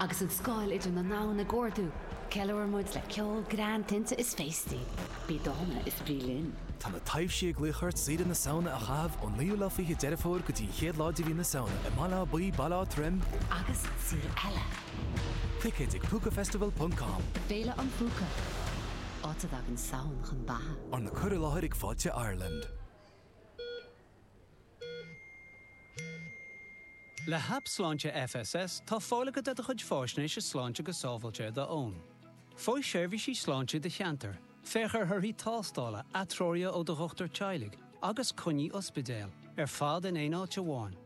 Agus an scáil idir na ndomhan ag ardú, ceiliúr muid le ceol, greann, tinte is féastaí. Bí dána is bí linn! Tá na taibhsí ag glaoch ort. Saoire na Samhna a chaitheamh ón naoú lá fiche Deireadh Fómhair go dtí an chéad lá de mhí na Samhna i mBaile Átha Buí, Baile Átha Troim, agus an saol eile! Ticéid ag Púcafestival ponc com. Féile an Phúca, áit a dtagann Samhain chun beatha. Arna cur i láthair ag Fáilte Ireland. Le hAip Sláinte FSS tá fáil agat ar do chuid fáisnéise sláinte go sábháilte ar d'fhón. Faigh seirbhísí sláinte i do cheantar, féach ar thorthaí tástála, atreoruithe ó do dhochtúir teaghlaigh agus coinní ospidéil, ar fad in aon áit amháin.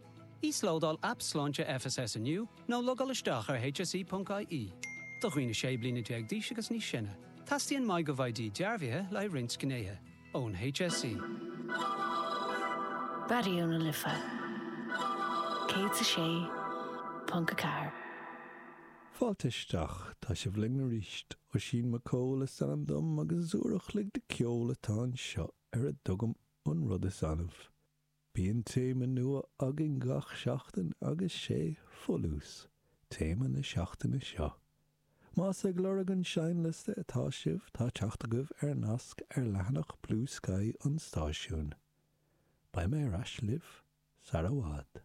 Íoslódáil Aip Sláinte FSS inniu nó logáil isteach ar hse.ie. Do dhaoine 16 bliana d'aois agus níos sine, teastaíonn MyGovID dearbhaithe le haghaidh roinnt gnéithe. ón HSE. Raidió na Life 106.4. Fáilte isteach, tá sibh linn arís. Oisín Mac Cóil is ainm dom agus is uair a chloig de ceol atá anseo ar a dtugaim An Rud Is Annamh. Bíonn téama nua againn gach seachtain agus 'sé 'Folús' téama na seachtaine seo. Más ag lorg an seinnliosta atá sibh, tá teacht agaibh ar nasc ar leathanach Bluesky an stáisiúin. Beidh mé ar ais libh sar i bhfad.